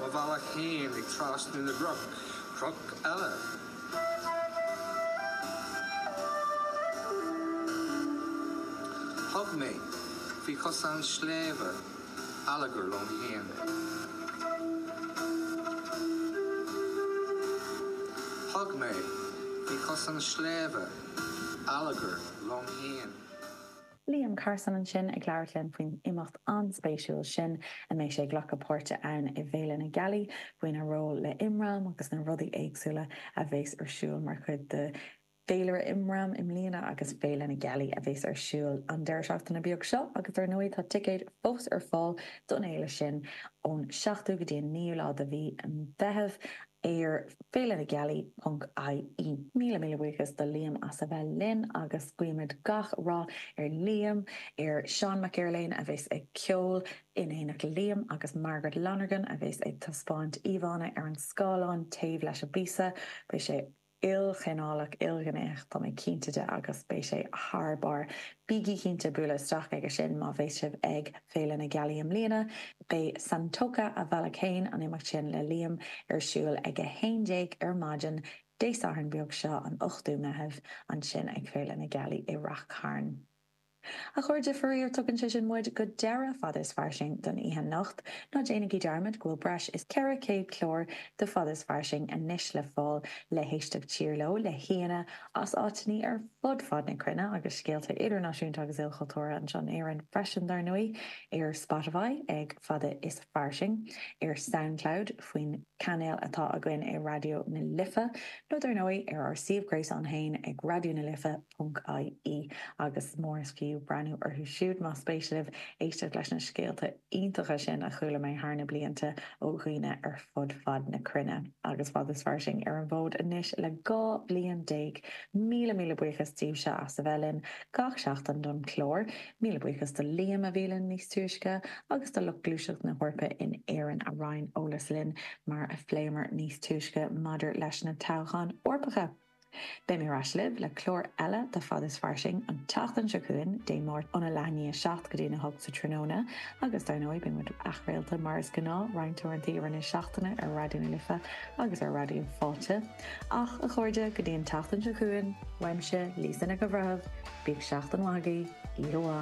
Mo bhealach féin i trasnú na gcnoc, cnoc eile. Thug mé faoi chosán sléibhe allagar liom féin. Thug mé faoi chosán sléibhe. Allagar liom fhéin. Liam Carson ansin ag labhairt linn faoin imeacht an-spéisiúil sin a mbeidh sé ag glacadh páirte ann i bhFéile na Gealaí, faoina ról le IMRAM agus na rudaí éagsúla a bheas ar siúl mar chuid de féilire IMRAM i mbliana agus Féile na Gealaí a bheas ar siúl an deireadh seachtaine beag seo agus dar ndóigh tá ticéid fós ar fáil don fhéile sin ón 7ú go dtí an 9ú lá de mhí an Mheithimh. ar feilenagealai.ie. Míle míle buíochas do Liam as a bheith linn agus guímid gach rath ar Liam, ar Sheán Mac Erlaine a bheas ag ceol in éineacht le Liam agus Margaret Lonergan a bheas ag taispeáint íomhánna ar an scáileán taobh leis an bpíosa. Beidh sé. ilchineálach, ilghnéitheach, tá mé cinnte de, agus beidh sé thar barr. Bígí cinnte bualadh isteach chuige sin má bheas sibh ag Féile na Gealaí i mbliana. Beidh Santoka, Mo Bhealach Féin, an imeacht sin le Liam, ar siúl ag 11 ar maidin, Dé Sathairn beag seo, an 8ú Meitheamh, ansin ag Féile na Gealaí i Ráth Chairn. A chairde, faraor, tugann sé sin muid go deireadh Fada is Fairsing don oíche anocht. Ná déanaigí dearmad go bhfuil breis is 400 clár de Fada is Fairsing anois le fáil le héisteacht siar leo, le haíonna as áiteanna ar fud fad na cruinne agus scéalta idirnáisiúnta agus ilchultúrtha anseo in Éirinn freisin, dar ndóigh, ar Spotify ag Fada is Fairsing, ar Soundcloud faoin chainéal atá againn i Raidió na Life, nó dar ndóigh ar ár suíomh gréasáin féin ag Raidió na Life. .ie agus molaim daoibh breathnú orthu siúd, más spéis libh éisteacht leis na scéalta iontacha sin a chuala mé thar na blianta ó dhaoine ar fud fad na cruinne agus Fada is Fairsing ar an bhfód anois le dhá bhliain déag. Míle míle buíochas daoibhse as a bheith linn gach seachtain don chlár. Míle buíochas do Liam, a bhí linn níos túisce, agus do lucht Gluaiseacht na hEorpa in Éirinn a roinn eolas linn, mar a phléamar níos túisce, maidir leis na toghcháin Eorpacha. Beimid ar ais libh le clár eile de Fada is Fairsing an tseachtain seo chugainn, Dé Máirt, óna leath i ndiaidh a seacht go dtína hocht sa tráthnóna, agus dar ndóigh, beidh muid athchraolta mar is gnáth roinnt uaireanta i rith na seachtaine ar Raidió na Life agus ar Raidió Fáilte. Ach, a chairde, go dtí an tseachtain seo chugainn, uaimse, Lisa Nic an Bhreithimh, bíodh seachtain mhaith agaibh. Íoróa!